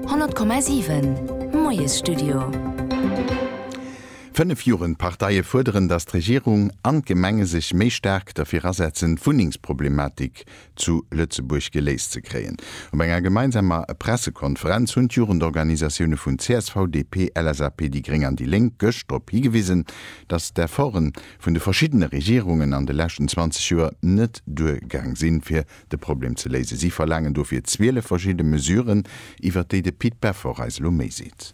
100,7 Moiesstudio. Fënnef Jugendparteie fuerderen, datt d'Regierung an d'Gemenge sech méi staark derfir asetzen, d'Wunnengsproblematik zu Lëtzebuerg geléist ze kréien. Op enger gemeinsamer Pressekonferenz hunn d'Jugendorganisatioune vun csv, DP, LSAP, déi gréng an déi lénk gëscht drop higewisen, datt d'Efforte vun de verschiddene Regierungen an de leschten 20 Joer net duergaang sinn, fir De Problem ze léisen. Si verlaangen dofir 12 verschidde Mesuren, iwwert déi de Pit Beffort eis elo méi seet.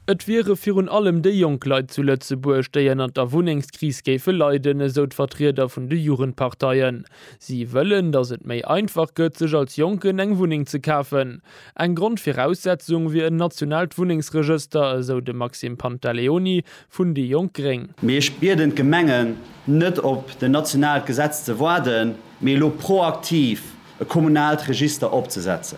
Et wiere virun allem déi jonk Leit zu Lëtzebuerg, déi ënnert der Wunnengskris géife leiden, esou d'Vertrieder vun de Jugendparteien. Si wëllen, datt et méi einfach gëtt, sech als Jonken eng Wunneng ze kafen. Eng Grondviraussetzung wier en nationaalt Wunnengsregëster, esou de Maxime Pantaleoni, vun déi jonk gréng. Mee ech bieden d'Gemengen, net op den nationaalt Gesetz ze waarden, mee elo proaktiv e kommunaalt Register opzesetzen.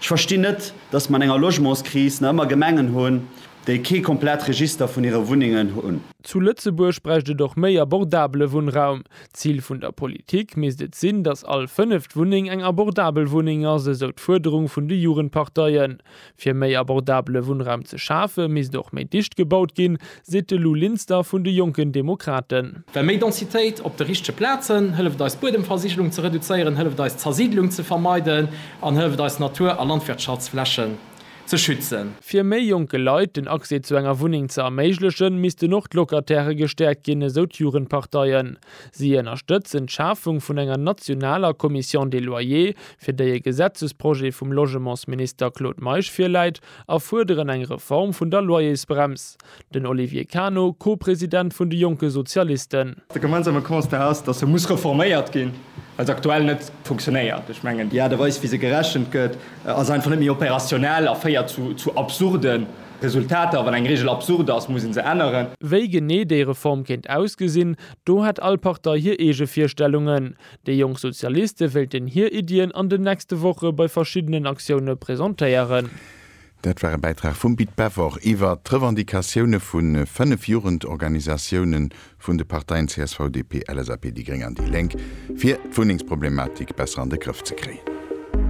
Ech verstinn net, dass mer an enger Logementskris nach ëmmer Gemengen hunn, déi kee komplett Register vun hire Wunnengen hunn. Zu Lëtzebuerg bräicht et och méi abordabele Wunnraum. D'Zil vun der Politik misst et sinn, dass all fënneft Wunneng eng abordabel Wunneng ass, esou d'Fuerderung vun de Jugendparteien. Fir méi abordabele Wunnraum ze schafe misst och méi dicht gebaut ginn, seet de Lou Linster vun de Jonken Demokraten. Well méi Densitéit op de richtege Plazen hëlleft eis d'Buedemversigelung ze reduzéieren, hëlleft eis d'Zersiidlung ze vermeiden an hëlleft eis Natur a Landwirtschaftsflächen ze schützen. Fir méi jonke Leit den Accès zu enger Wunneng ze erméiglechen, missten och d'Locatairë gestäerkt ginn, esou d'Jugendparteien. Si ënnerstëtzen d'Schafung vun enger nationaler Commission des loyers fir déi e Gesetzesprojet vum Logementsminister Claude Meisch virläit, a fuerderen eng Reform vun der Loyersbrems, den Olivier Cano, Co-President vun de jonke Sozialisten. De gemeinsame Constat ass, datt se muss reforméiert ginn, well se aktuell net funktionéiert. Ech mengen, déi Aart a Weis, wéi se gerechent gëtt, ass einfach net méi opérationnel a féiert zu absurde Resultater. Wann eng Reegel absurd ass, muss ee se änneren. Wéi genee déi Reform kéint ausgesinn, do hätt all Partei hir eege Virstellungen. Déi jonk Sozialiste wéilten hir Iddien an den nächste Woche bei verschiddenen Aktioune presentéieren. Dat war e Bäitrag vum Pit Peffer iwwer d'Revendicatioune vu 5 Jugendorganisatioune vun de Parteien csv, DP, LSAP, déi Gréng an déi Lénk, fir d'Wunnengsproblematik besser an de Grëff ze kréien.